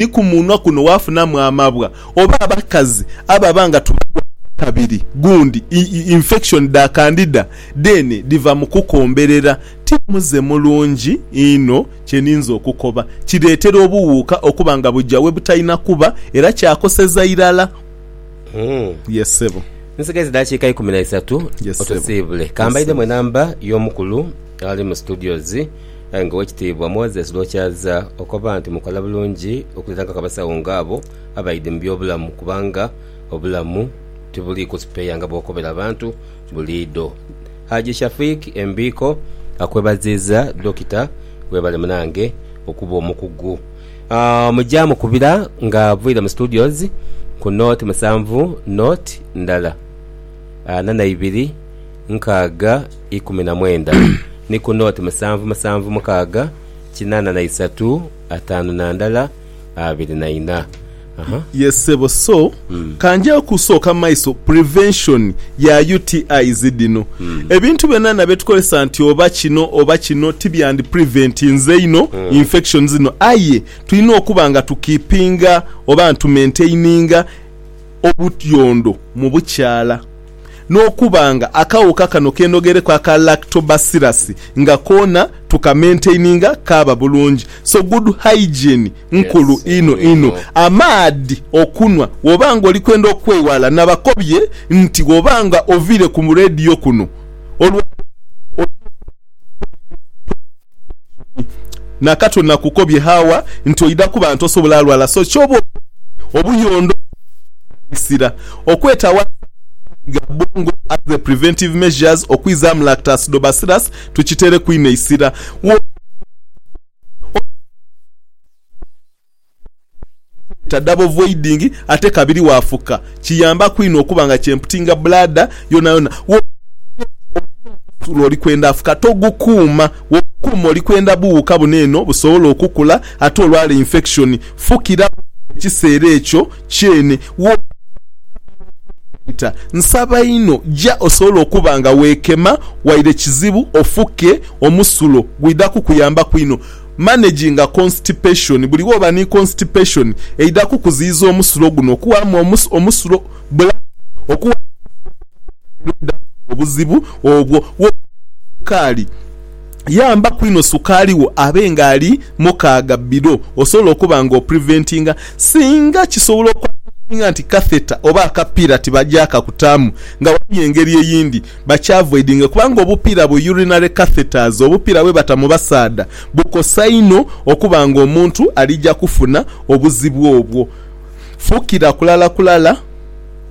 Ni ku munwa kuno waafunamu amabwa oba abakazi ababa nga tubalwaire akabiri gundi, infection, dha kandida dheene dhiva mu kukomberera. Ti muze mulungi inho kye ninze okukoba. Kireetera obuwuuka okuba nga buja we butalina kuba era kyakoseza irala. Yee ssebo. Nsigaisa edaakiika ikumi na isatu otusiibule. Ka mbaidhemu enamba y'omukulu ali mu studios. Aye nga Owekitiibwa Moses Rwokyaza okoba nti mukola bulungi okulirangako abasawo nga abo abaidhi mu by'obulamu kubanga obulamu tibuliiku sipeeya nga bwokobera abantu buliidho. Haji Shafiq Embiiko akwebaziiza Dokita webale munange okuba omukugu mugya mukubira nga avaire mu studios ku nought musanvu nought ndala ana naibiri nkaaga ikumi na mwenda ni ku nooti musanvu musanvu mukaaga kinaana na isatu ataanu na ndala abiri na ina. Yes sebo so kanjeyo kusooka maiso prevention ya UTIs dhino. Ebintu byonana byetukozesa nti oba kino oba kino tibyandi preventinze inho infections dhino aye tulina okuba nga tu keepinga oba ntu mentaininga obutyondo mu bukyala. n'okuba nga akawuka kano kenogereku aka lactobacillus nga koona tukamaintaininga kaaba bulungi. So good hygiene nkulu inho inho. Amaadhi okunhwa woba nga oli kwenda okweghala. Nabakobye nti woba nga oviire ku radio kuno olwa leero olina okuba nga okola ku bifo ebitundibwa. Nakato nakukobye Hawa nti oidha kuba nti osobola lwala so kyoba okoze obuyondo okumughanhisira okwetawaza amaadhi ga bwongo as a preventive measures okwizamu lactacidobacillus tukitereku inho eisira. Woba nga omusaadha oba nga omukazi. Kibeta double voiding ate kabiri wafuka kiyambaku inho okuba nga kyemputinga bladder yonayona. Wobanga olina omusulo oli kwenda afuka togukuuma, wogukuuma oli kwenda buwuka buno eno busobola okukula ate olwala infection. Fukira buwuka mu kiseera ekyo kyene wobanga okamala okweghaita. Nsaba inho ja osobole okuba nga weekema waire kizibu ofuke omusulo gwidha kukuyambaku inho. Managinga constipation, Buli woba ni constipation eidha kukuziyiza omusulo guno okuwamu omusulo bulamu. Okuwamu omusulo kwonka era oidha kufuna obuzibu obwo. Woba olinha sukaali, yambaku inho sukaali wo abe nga ali mukaaga below osobola okuba nga opreventinga. Singa kisobola okwanguyirwa nti catheter oba akapira tibagyakakutaamu nga waliwo engeri eyindi Bakyavoidinge kubanga obupiira bu urinary catheters, obupiira bwe bata mu basaadha, bukosa inho okuba nga omuntu alija kufuna obuzibu obwo. Fukira kulala kulala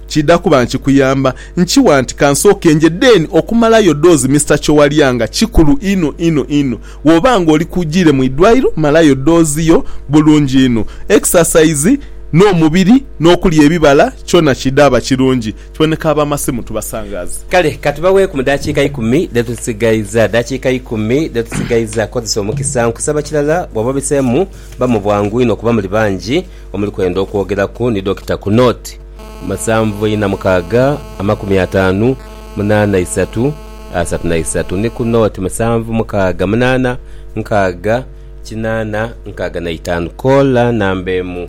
kidha kuba nkikuyamba. Nkiwa nti kansooke nje then okumalayo doozi Mister Kyowalyanga kikulu inho inho inho. Woba nga oli kujiire mu idwaliro malayo doozi yo bulungi inho. Exercise n'omubiri n'okulya ebibala kyona kidhaaba kirungi. Tweneka ab'amasimu tubasangaaze. Kale ka tubaweeku mu daakiika ikumi dhe tusigaizza. Daakiika ikumi dhe tusigaizza. Kozesa omukisa. Nkusaba kirala, bw'oba obiseemu, ba mu bwangu inho kuba muli bangi omuli kwenda okwogeraku ni Dokita ku nooti, musanvu ina mukaaga amakumi ataanu munaana isatu asatu na isatu ni ku nooti, musanvu mukaaga munaana nkaaga kinaana nkaaga na itaanu. Koola namba emu.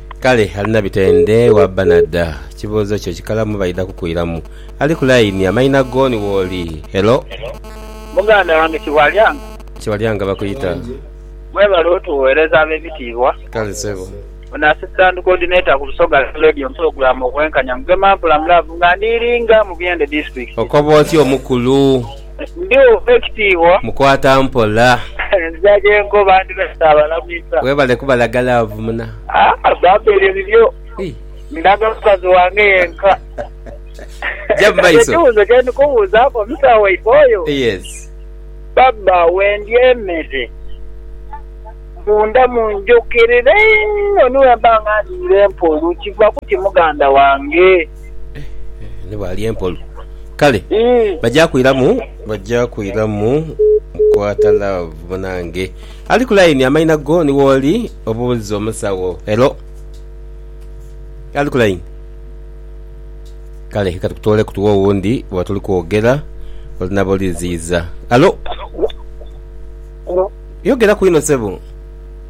Kale alina bitende wa banada. Kibuuzo kyo kikalamu baidha kukuiramu. Ali ku line amaina go ni wooli. Hello. Muganda wange Kibwalyanga. Kibwalyanga bakuyita. Mwebale otuwereza abebitiibwa. Kale sebo. Ono Assistant Coordinator ku Busoga Radio and Program Obwenkanya Mugema Mpula mu Love nga ndi Iringa mu Byende District. Okoba otya omukulu. Ndi ow'ekitiibwa. Mukwata mpola. Nzira gye nkoba ndi lwe ntaabalamisa. Weebale kubalaga laavu muna. Haa bambi ebyo bibyo. Ndaga mukazi wange yenka. Gya mu maiso. Ekibuuzo kye ndi kubuuzaaku omusawo waife oyo. Yes. Baba wendya emere munda munjukirira inho ni bwe mba nga ndiire mpoolu. Kiva ku ki muganda wange? Ni bwali empolu. Kale Mm. bajja kwiramu, bajja kwiramu mukwata love munange. Ali ku line amaina go ni woli obuuza omusawo. Hello. Ali ku line. Kale katukutole kutuwa owundi bwa tuli kwogera olinaba oliziyiza. Hello. Hello. Yogera kwino sebo.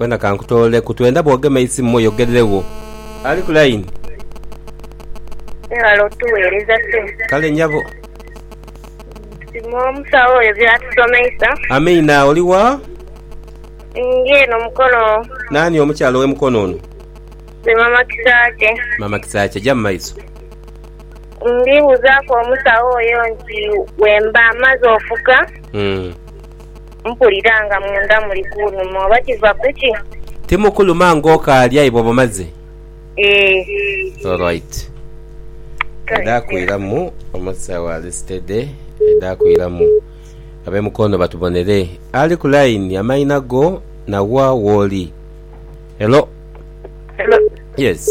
Wena kankutooleku. Twenda bwogema eisimu oyogereregho. Ali ku line. Webale otuwereza ssebo. Kale nyabo. Tusiima omusawo oyo byatusomeisa. Amiina. Oli wa? Ndi eno Mukono. Nani omukyala owe Mukono ono? Nze mama Kisaakye. Mama Kisaakye. Ja mu maiso. Ndi buzaku omusawo oyo nti wemba maze ofuka. Mpulira nga munda muli kunuma oba kiva kuki? Timukuluma nga okaali aye bwoba omaze? Eeh. Alright. Edha kwiramu omusawo ali steady edha kwiramu. Abe mukono batubonere. Ali ku line amaina go na wa woli. Hello. Hello. Yes.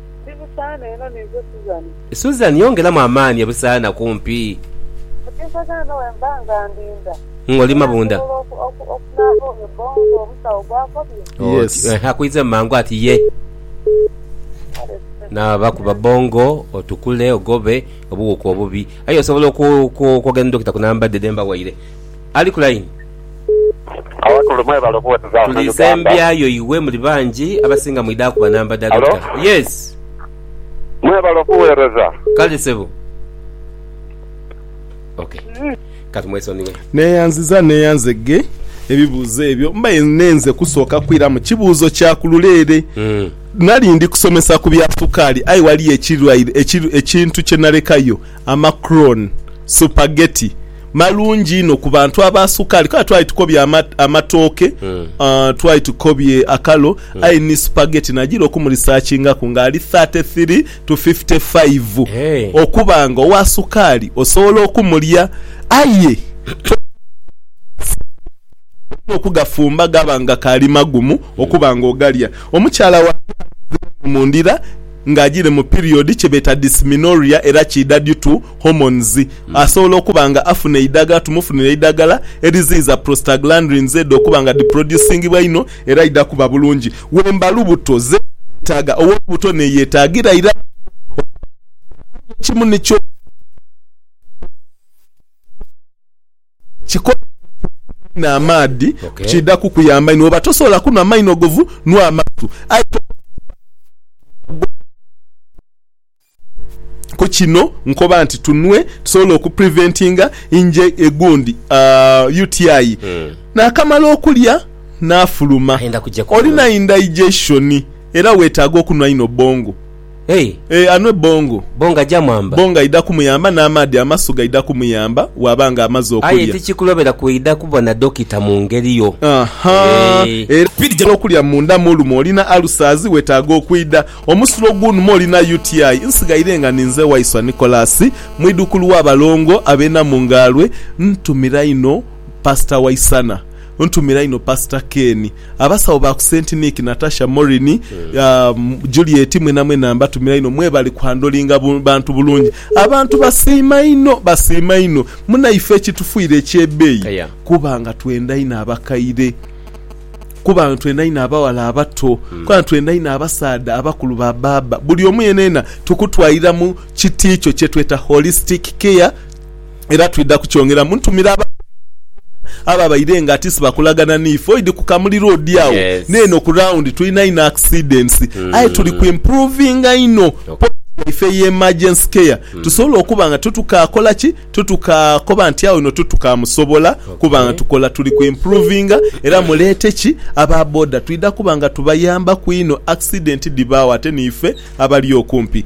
Ndi Busaana eno ninze Suzan. Suzan yongeramu amaani e Busaana kumpi. Mukinsagala eno wemba nga ndinda. Ng'oli mabunda. Era nsobola okunaaba oyo bbongo omusawo gw'akobye? Yes. Oti, eeh, akwize mangu ati ye. Kale sir. Naaba kuba bbongo otukule ogobe obuwuka obubi. Aye osobola okwogera ni Dokita ku namba dhe dhe mbawaire. Ali ku layini. Tuli sembya yo iwe muli bangi abasinga mwidha kuba namba dha doctor. Yes. Kale sebo. Ok katumwesonighe. Neyanziza neyanze ghe ebibuuzo ebyo mbaire ninenze kusooka kwiramu kibuuzo kya ku luleere. Nali ndi kusomesa ku bya sukaali aye waliyo ekintu kye nalekayo. Amacron, supageti, malungi inho ku bantu aba sukaali. Kale twali tukobye amatooke, twali tukobye akalo, aye ni supageti nagira okumurisaakingaku ng'ali thirty three to fifty five okuba nga owa sukaali osobola okumulya aye olina okugafumba gaba nga kaali magumu okuba nga ogalya. Omukyala wange alinziramu mu ndira. nga ajiire mu period kyebeeta dysmenorrhea era kiidha due to hormones. Asobola okuba nga afuna eidhagala tumufunire eidhagala eriziyiza prostaglandrins edho okuba nga dhiproducingibwa inho era aidha kuba bulungi wemba lubuto zeetaaga owolubuto neyetaagira irala okuba nga aidha kukola aye ekimu nikyo okuba nga aidha kukola. Kikole okukuuma einho amaadhi kiidha kukuyamba inho. Bwoba tosobola kunhwa maino govu, nwaa amasu. Aye tokoba nti bwaba nga gwo ogusingayo. Ku kino nkoba nti tunwe tusobole oku preventinga inje egundi UTI. Naakamala okulya naafuluma, olina indigestion era weetaaga okunhwa inho bwongo. Hey! Ee, anwe bongo. Bongo aja mwamba. Bongo aidha kumuyamba n'amaadhi amasu gaidha kumuyamba bw'aba nga amaze Aye okulya. tikikulobera kwidha kubona dokita mu ngeri yo. Aha! Eeh. Era bw'idha n'okulya munda mu lume olina alusazi, weetaaga okwidha. Omusulo gw'unuma olina UTI. Nsighaire nga ninze Waiswa Nicholas, mwidhukulu w'abalongo ab'e Namungaalwe. Ntumira inho Pasita Waisana. Ntumira inho Pastor Ken, abasawo ba ku Saint Nick, Natasha, Maureen, Juliet mwena mwena mbatumira inho mwebali ku handlinga bantu bulungi. Abantu basiima inho basiima inho munaife ekitufuire ekyebeeyi kuba nga twenda inho abakaire kuba nga twenda inho abawala abato kuba nga twenda inho abasaadha abakulu ba baaba buli omu yena yena tukutwairamu kiti kyo kyetweta holistic care. era twidha kukyongeramu. Ntumira ababonero boona ababaire nga ati sibakolagana n'ife. Oidhi ku kamuliro odi agho n'eno ku round. Tulina inho accidents aye tuli ku improvinga inho point yaife eye emergency care tusobole okuba nga titukakola ki? Titukakoba nti agho inho titukamusobola kuba nga tukola. Tuli ku improvinga era muleete ki? Aba boda. Twidha kuba nga tubayambaku inho accident dhibaagho ate n'ife abali okumpi.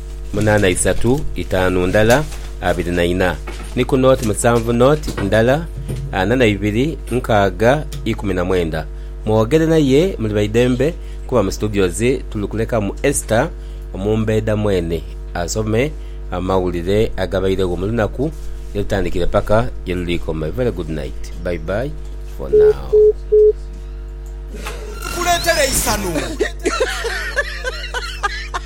munaana isatu itaanu ndala abiri na ina, ni ku nooti musanvu nooti ndala ana na ibiri nkaaga ikumi na mwenda. Mwogere naye muli baidembe kuba mu situdiyozi tuli kulekamu Esther omumbeeda mwene asome amawulire agabairegho mu lunaku ye lutandikire paka ye luliikoma. A very good night. Bye bye for now.